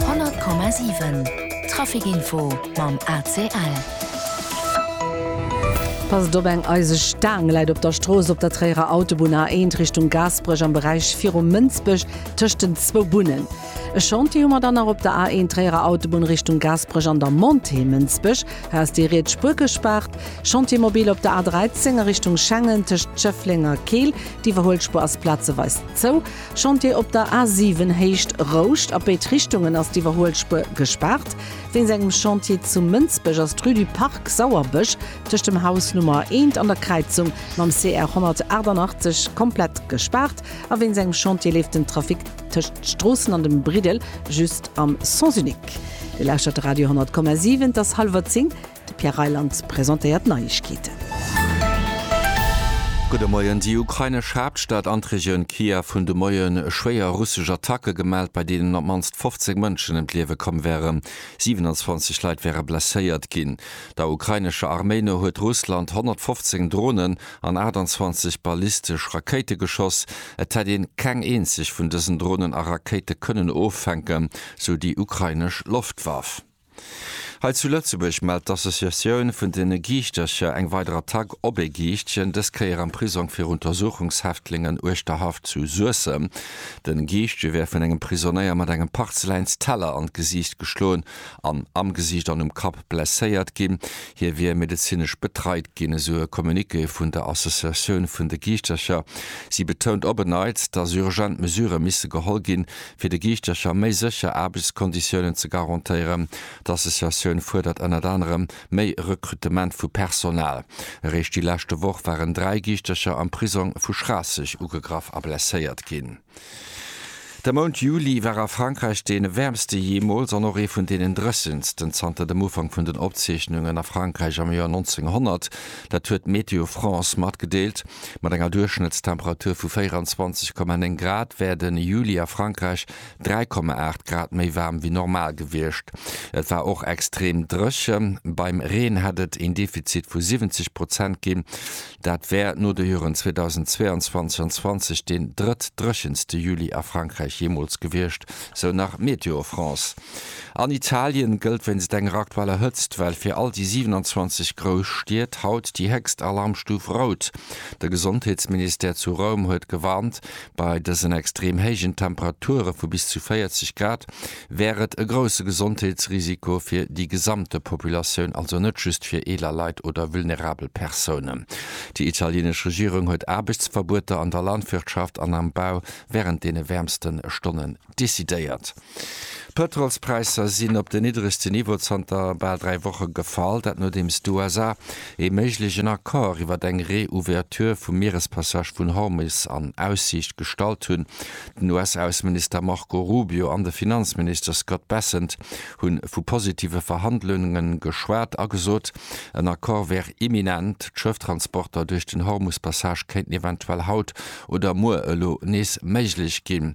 100,7 Trafic Info mam ACL. Passt op, eng eiseg Staang läit op der Strooss op der Tréierer Autobunn A1 Richtung Gaasperech am Beräich virum Mënsbech tëscht den zwou Bunnen. E Chantier hu mer dann nach op der A1 Tréierer Autobunn Richtung Gaasperech an der Montée Mënsbech. Hei ass déi riets Spuer gespaart. Chantier mobil op der A13 a Richtung Schengen tëscht Schëffleng a Keel. D'Iwwerhuelspuer ass plazeweis zou. Chantier op der A 7 Héicht Rouscht, a béid Richtungen ass d'Iwwerhuelspuer gespaart. Wéinst engem Chantier zu Mënsbech ass d'Rue du Parc Sauerbësch tëscht dem Haus Nummer 1 an der Kräizung mam CR 188 komplett gespaart a wéinst engem Chantier leeft den Trafic tëscht Stroossen an dem Briddel just am Sens unique. Dir lauschtert de Radio 10,7, et ass hallwer 10. De Pierre Reyland presentéiert d'Neiegkeeten. Gudde Moien. Déi ukrainesch Haaptstad an d'Regioun Kiew hunn de Moie schwéier russesch Attacke gemellt, bei deenen op d'mannst 15 Mënschen ëm d'Liewe komm wären. 27 Leit wäre blesséiert ginn. Der ukrainescher Arméi no huet Russland 115 Dronen an 28 ballistesch Rakéite geschoss. Et hätt een keng eenzeg vun dësen Dronen a Rakéite kënnen offänken, sou déi ukrainesch Loftwaff. Hei zu Lëtzebuerg mellt d'Associatioun vun den Giichtercher eng weider Attack op ee Giichtchen, dës Kéier am Prisong fir Untersuchungshäftlingen uechter Haff zu Suessem. Den Giichtje wär vun engem Prisonéier mat engem Parzeläinsteller an d'Gesiicht geschloen an am Gesiicht an um Kapp blesséiert ginn. Hie wier medezinesch betreit ginn, esou e Communiqué vun der Associatioun vun de Giichtercher. Si betount op en Neits, dass urgent Mesurë misse geholl ginn, Fir de Giichtercher méi sécher Aarbechtskonditiounen ze garantéieren. D'Associatioun fuerdert ënnert anerem méi Rekrutement vu Personal. Eréischt déi leschte Woch waren dräi Giichtercher am Prisong vu Schraasseg ugegraff a blesséiert ginn. De Mount Juli war a Frankräich dee wäermste jeemools an och ee vun deenen dréchensten zanter dem Ufank vun den Opzeechnungen a Frankräich am Joer 1900. Dat huet Météo France matgedeelt. Mat enger Duerchschnëttstemperatur vu 24,9 Grad wär de Juli a Frankräich 3,8 Grad méi waarm wéi normal gewiescht. Et war och extrem dréchen. Beim Reen hätt et een Defizit vu 70 Prozent ginn. Dat wär no de Joren 2022 an 20 deen drëtt dréchenste Juli a Frankräich jeemools gewiescht, sou nach Météo France. An Italien gëllt wéinst enger aktueller Hëtztwell fir all déi 27 grouss Stied haut déi héchst Alarmstuf Rout. De Gesondheetsministère zu Roum huet gewarnt, bei dësen extrem héijen Temperature vu bis zu 40 Grad wär et e grousse Gesondheetsrisiko fir déi gesamte Populatioun, also net just fir eeler Leit oder vulnerabel Persounen. Déi italienesch Regierung huet Aarbechtsverbueter an der Landwirtschaft an am Bau wärend deene wäermste Stonnen. decidéiert. D'Pëtrolspräisser sinn op den niddregste Niveau zanter bal dräi Woche gefall. Dat nodeems d'USA ee méiglegen Accord iwwert eng Reouverture vum Mierespassage vun Hormus an Aussiicht gestallt hunn. Den US-Ausseminister Marco Rubio an de Finanzminister Scott Bessent hu vu positive Verhandlunge geschwat a gesot, en Accord wär imminent. D'Schëfftransporter duerch den Hormuspassage kéinten eventuell haut oder muer elo nees méiglech ginn.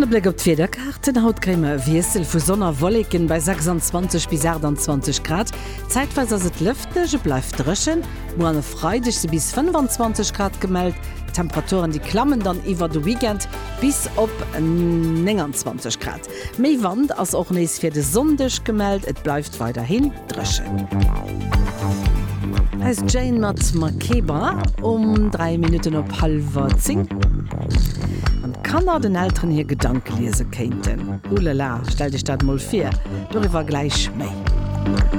An e Bléck op d'Wiederkaarten, Haut kréie mer e Wiessel vu Sonn a Wolleken bei 26 bis 28 Grad. Zäitweis ass et lëfteg, et bleift dréchen. Muer an e Freideg si bis 25 Grad gemellt. D'Temperaturen, déi klammen dann iwwer de Weekend bis op 29 Grad. Méi Wand ass och nees fir de Sonndeg gemellt, et bleift weiderhin dréchen. Hei ass Jane mat Makeba um 3 Minutten op hallwer 10. Wann d'Kanner den Elteren hir Gedanke liese kéinten, Ulala, stellt Iech dat mol vir. Doriwwer gläich méi.